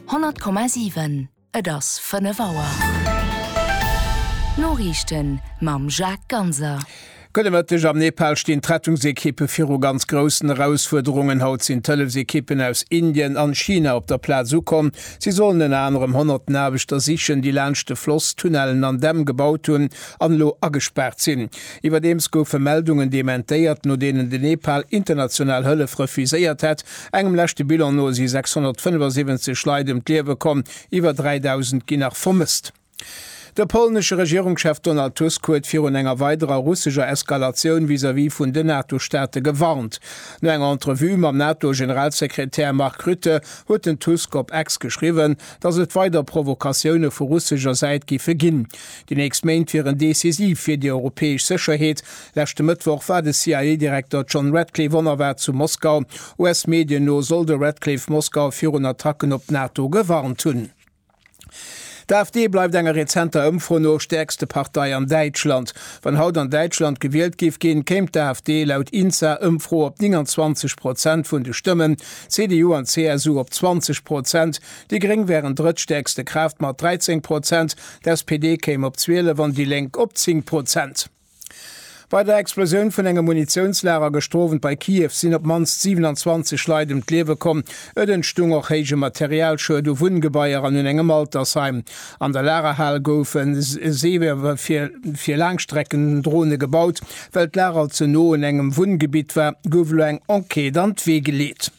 100,7 Et ass 5 Auer. D'Noriichten mam Jacques Ganser. Gudde Mëtteg, Am Nepal stinn d'Rettungsekippe viru ganz groussen Erausfuerderungen. Haut sinn d'Hëllefsekippen aus Indien an China op der Plaz ukomm. Si sollen ënner anerem honnerten Aarbechter sichen, déi laanscht de Floss Tunnellen an Dämm gebaut hunn an elo agespaart sinn. Iwwerdeems goufe Meldungen dementéiert, no deenen de Nepal international Hëllef refuséiert hätt. Engem leschte Bilan no si 675 Leit ëm d'Liewe komm, iwwer 3.000 ginn nach vermësst. De polnesche Regierungschef Donald Tusk huet virun enger weiderer russescher Eskalatioun vis-à-vis vun den NATO-Staate gewarnt. No enger Entrevue mam NATO-Generalsekretär Mark Rutte huet den Tusk op X geschriwwen, datt et weider Provokatioune vu russescher Säit giffe ginn. Déi nächst Méint wieren decisiv fir déi europäesch Sécherheet, Leschte Mëttwoch war de CIA-Direkter John Ratcliffe onerwaart zu Moskau. US-Medien no soll de Ratcliffe Moskau virun Attacken op d'NATO gewarnt hunn. D'AfD bleift enger rezenter Ëmfro no stäerkste Partei an Däitschland. Wann haut an Däitschland gewielt géif ginn, kéim d'AfD laut INSA-Ëmfro op 29 Prozent vun de Stëmmen, CDU an CSU op 20 Prozent. Déi Gréng wären drëttstäerkste Kraaft mat 13 Prozent, d'SPD kéim op 12 an déi Lénk op 10 Prozent. Bei der Explosioun vun engem Munitiounslager gëschter Owend bei Kiew sinn op d'mannst 27 Leit ëm d'Liewe komm. Et entstung och héije Materialschued u Wunngebaier an un engem Altersheim. An der Lagerhal goufe Seewer fir Laangstreckendrone gebaut. Well d'Lager ze no un engem Wunngebitt war, gouf elo eng Enquête an d'Wee geleet.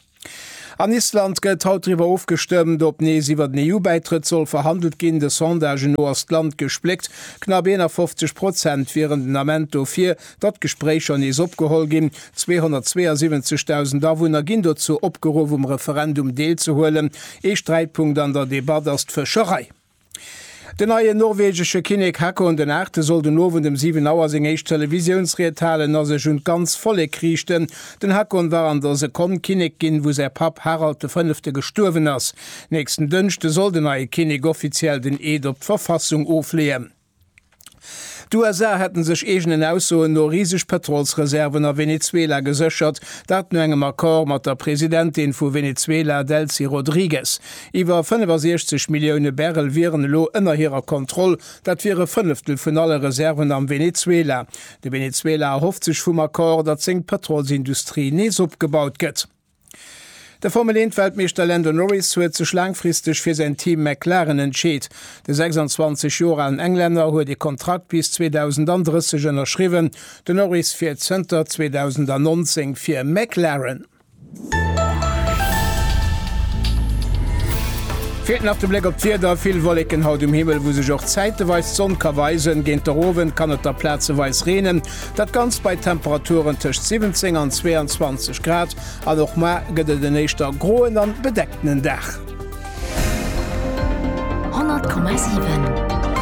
An Island gëtt haut driwwer ofgestëmmt, ob nees iwwer den EU-Bäitrëtt soll verhandelt ginn. De Sondagen no ass d'Land gespléckt, knapp 51 Prozent wieren den Ament dofir, datt d'Gespréicher nees opgeholl ginn. 272.000 Awunner ginn dozou opgeruff, um Referendum deelzehuelen. Ee Sträitpunkt an der Debatt ass d'Fëscherei. Den neien norwegesche Kinnek Haakon den Aachte soll den Owend ëm 7 Auer seng éischt Televisiounsried halen a sech un d'ganz Vollek riichten. Den Haakon war an der Sekonn Kinnek ginn, wou säi Papp Harald de Fënnefte gestuerwen ass. Nächsten Dënschde soll den neie Kinnek offiziell den Eed op d'Verfassung ofleeën. D'USA hätten sech eegenen Aussoen no riseg Pëtrolsreserven a Venezuela geséchert, dat no engem Accord mat der Presidentin vu Venezuela Delcy Rodriguez. Iwwer 65 Millioune Barrel wieren elo ënner hirer Kontroll, dat wier e Fënneftel vun alle Reserven am Venezuela. De Venezuela erhofft sech vum Accord, datt seng Pëtrolsindustrie nees opgebaut gëtt. De Formel 1 Weltmeeschter Lando Norris huet sech laangfristeg fir säin Team McLaren entscheet. De 26 Joer alen Englänner huet ee Kontrakt bis 2030 ënnerschriwwen. De Norris fiert zënter 2019 fir McLaren. Feelt nach de Bléck op d'Wieder, vill Wolleken haut um Himmel, wou sech och zäiteweis d'Sonn ka weisen. Géint der Owend kann et da plazeweis reenen. Dat Ganzt bei Temperaturen tëscht 17 an 22 Grad an och mar gëtt et en éischter groen an bedeckten Dag. 100,7.